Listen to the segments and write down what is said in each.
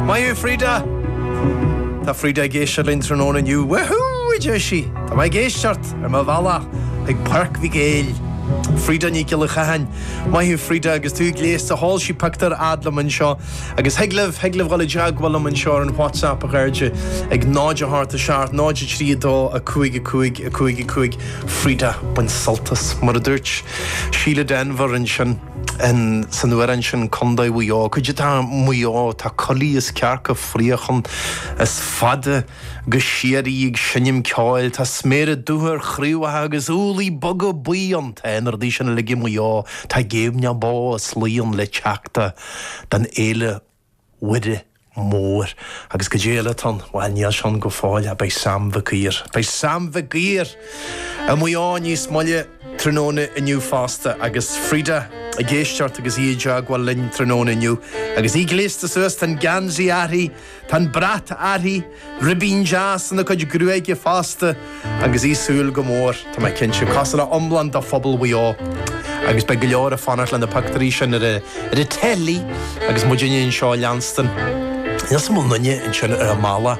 Maith thú Freda! Tá Freda ag éisteacht linn tráthnóna inniu. Wahoo! a deir sí. Tá mé ag éisteacht ar mo bhealach chuig Páirc Mhic Éil. Freda Nic Giolla Chatháin. Maith thú Freda agus tú gléasta, chuir sí pictiúr a fhad liom anseo. Agus thig libh, thig libh dhul i dteagmháil liom anseo ar an WhatsApp a chairde ag 0 8 7 0 3 2 5 5 5 5. Freda, bain sult as. Mar a dúirt Síle Denvir ansin. An seanamhrán sin Contae Mhaigh Eo, caidé atá i Maigh Eo, tá coiligh is cearca fraoigh ann is fada go síoraí ag seinm ceoil, tá sméara dubha ar chraobhacha agus úllaí boga buí ann, tá na rudaí sin uilig i Maigh Eo, tá géimneach bó is lao ann le teacht don Fhéile Mhuire Mhór. Agus caidé eile atá ann? Bhail níl sé ann go fóill, ach beidh Sam Mhic Uidhir. Beidh Sam Mhic Uidhir i Maigh Eo níos moille tráthnóna inniu fosta, agus Freda ag éisteacht agus í i dteagmháil linn tráthnóna inniu, agus í gléasta suas, tá an geansaí airthi, tá an brat airthi, Ribín deas ina cuid gruaige fosta agus í ag súil go mór, tá mé cinnte, cosúil le iomlán de phobal Mhaigh Eo. Agus beidh go leor ag fanacht le na pictiúirí sin ar ar an teilí agus muidinne anseo á leanstan. Níl a fhios agam an bhfuil aon duine ansin ar a mbealach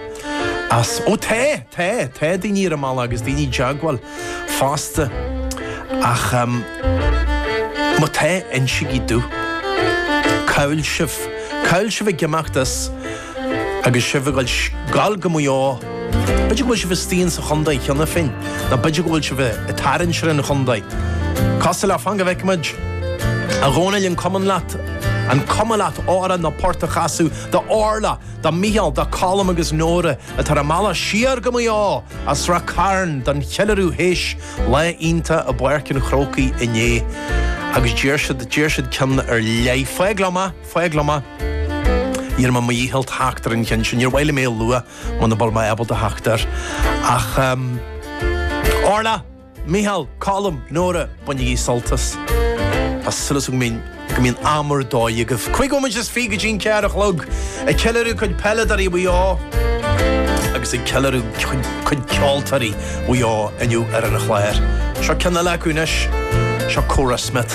as, ó tá, tá, tá daoine ar a mbealach agus daoine i dteagmháil fosta ach má tá, insigí domh. Cá'il sibh? Cá'il sibh ag imeacht as? Agus sibh ag dul go Maigh Eo, b'fhéidir go bhfuil sibh istigh ins an chontae cheana féin, nó b'fhéidir go bhfuil sibh ag tarraingt ar an chontae. Cosúil le, fan go bhfeicfimid. A Dhónaill, an cuma leat? An cuma leat amhrán nó port a chasadh do Orla, do Mhícheál, do Colm agus Nóra atá ar a mbealach siar go Maigh Eo as Rath Cairn don cheiliúradh théis lá iontach i bPáirc an Chrócaigh inné agus d'iarr siad, d'iarr siad ceann ar leith. Fág liom é! Fág liom é. Déanfaidh mé mo dhícheall theacht ar an cheann sin, níor mhaith liom é a lua muna bhfuil mé ábalta theacht air. Ach em. Orla! Mícheál! Colm! Nóra! Bainigí sult as! Tá súil agam go mbíonn am ar dóigh agaibh. Cúig bhomaite is fiche go dtí'n ceathair a chlog, ag ceiliúradh cuid peileadóirí Mhaigh Eo agus ag ceiliúradh cuid, cuid ceoltóirí Mhaigh Eo inniu ar an chlár. Seo ceann eile acu anois, seo Cora Smyth.